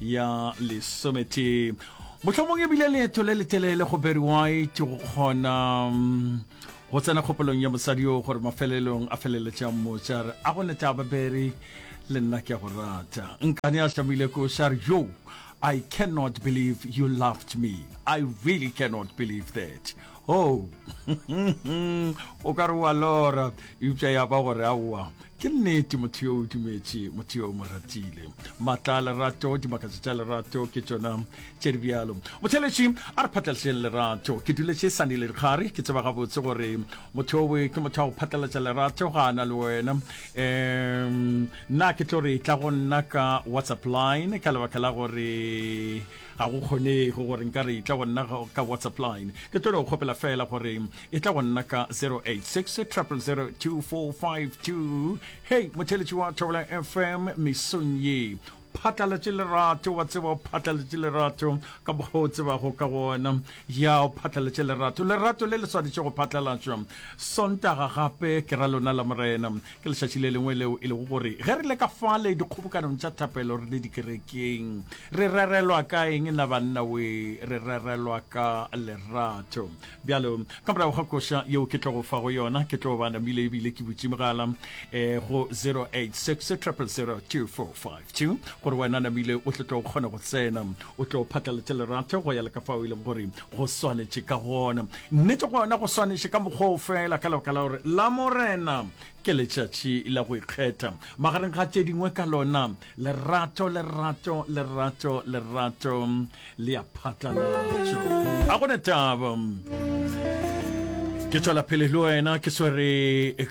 ya lesometee mohlomong e bile leeto le letelele go barry white go kgona mm, go tsena kgopolong ya mosadi yo gore mafelelong a feleletša motša re a go neta ba barry le nna ke a go rata nkane a šamile ko sa re yo i cannot believe you loved me i really cannot believe that oh o ka re wa lora eupša ya ba gore aowa ke nnete motho yo o dumetše motho yo o mo ratile maatla a lerato dimakatso tša lerato ke tšona tše di bjalo motheletši a re phatlaletšeng lerato ke duletše sane le dikgare ke tseba gabotse gore motho owe ke motho wa go phatlalatša lerato ga a na le wena um nna ke tlo re tla go nna ka whatsapp line ka lebaka la gore ga go kgonege gore nka re e tla go nna ka whatsapp line ke tlo go kgopela fela gore e tla go nna ka 0866002452 hei motheletši wa thobela fm mesong ye phatlalatše lerato wa tseba o phatlalatše lerato ka mokgwa o tsebago ka gona ya o phatlalatše lerato lerato le le swanetše go phatlalatšwa sontaga gape ke ra lona la morena ke lešatši le lengwe leo e lego gore ge re le ka fale dikgobokanong tša thapelo re le dikerekeng re rerelwa ka eng na banna we re rerelwa ka lerato bjalo ka morago ga koša yeo ke tlogo fa go yona ke tlo ba namile ebile ke botšimogala um eh, go 086 000 2455 tše gore wena namile o tlo tlo kgona go tsena o tlo phatlaletše lerato go ya le ka fao e leng gore go swanetše ka gona nnete go yona go swanetše ka mokgwao fela ka lebaka la gore la morena ke letšatši la go ikgetha magareng ga tše dingwe ka lona lerato lerato lerato lerato le ya phatlalatšo a gona taba ke tswela phele le wena ke swere